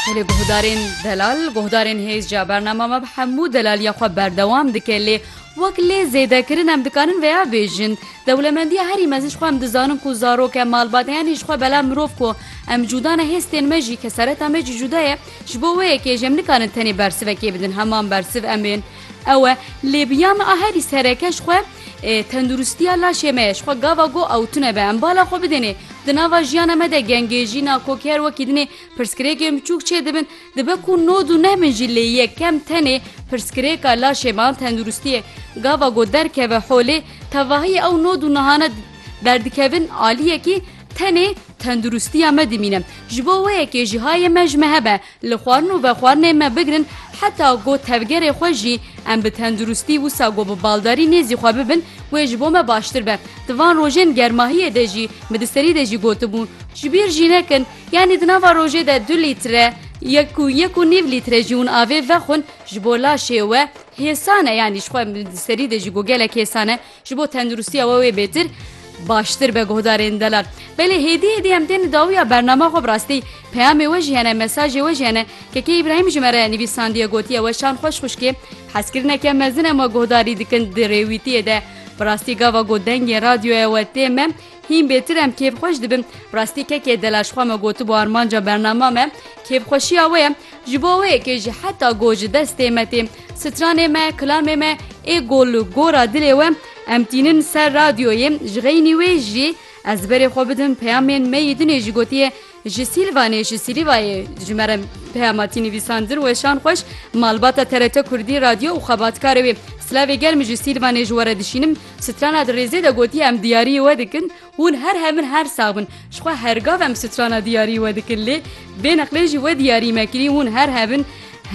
Belê guhdarên delal guhdarên hêz ca bernama me bi hemû delaliya xwe berdewam dike lê wek lê zêdekirin em dikarin veya bêjin dewlemendiya herî mezin xwe em dizanin ku zarok e malbat heyanî ji xwe bela mirov ku em cudane hêstên me jî kesereta me jî cuda ye ji bo wê yekê jem nikarin tenê bersivekê bidin heman bersiv em ên ew e lê biya me a herî sereke ji xwe Tenduristiya laşê me ye ji xwe gava go ew tune be em bala xwe bidênê. Di nava jiyana me de gengê, jîna, kokî her wekî dinê pirsgirêkên biçûk çêdibin. Dibe ku no du neh bin jî lê yek kem tenê pirsgirêka laşê me an tenduristiyê gava go derkeve holê. Tevahiyê ew no du nehane derdikevin aliyekî tenê tenduristiya me dimîne. Ji bo wê yekê jî hayê me ji me hebe. Li xwarin û vexwarinê me bigirin heta ku tevgerê xwe jî em bi tenduristî wisa ku bi baldarî nêzî xwe bibin wê ji bo me baştir be. Di van rojên germahiyê de jî min di serî de jî gotibû. Ji bîr jî nekin yanî di nava rojê de du lître ya ku yek û nîv lître jî hûn avê vexwin ji bo laşê we hêsan e yanî ji xwe min di serî de jî got gelek hêsan e. Ji bo tenduristiya we wê bêtir baştir be guhdarên delal. Belê hêdî hêdî em tên dawiya bernama xwe rastî peyamê we jiyane mesajê we jiyane kekê İbrahim ji me re nivîsandiye gotiye we şan xweş xuşkê hezkirineke mezin em we guhdarî dikin di rêwîtiyê de. Bi rastî gava got dengê radyoya we tê me Hîn bêtir em kêfxweş dibin. Rastî kekê dela ji xwe me gotibû armanca bernama me kêfxweşiya wê ye. Ji bo wê yekê jî heta go ji destê me tê. Stranê me, kilamê me ê go li gora dilê we. Em tînin ser radyoyê. Ji xeynî wê jî ez berê xwe bidim peyamên me yî dinê jî gotiye Ji Sîlvanê ji Sîlîvayê ji me re peyama tî nivîsandin weşan xweş malbata TRT Kurdî radyo û xebatkarê wê silavê germ ji Sîlvanê ji we re dişînim strana di rêzê de gotiye em diyariyê we dikin hûn her hev in her sax bin ji xwe hergav em strana diyariyê we dikin lê bêneqlê jî we diyariyê me kirî hûn her hev in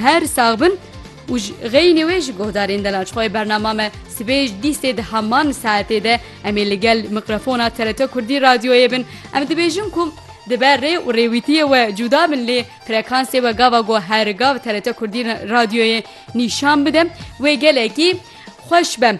her sax bin. û ji xeynê wê ji guhdarên delal ji xwe yê bernama me sibê ji dîstê di heman saetê de em ê li gel mikrofona TRT Kurdî radyoyê bin em dibêjin ku dibe rê û rêwîtiyê we cuda bin lê frekansê we gava ku her gav TRT Kurdî radyoyê nîşan bide wê gelekî xweş be.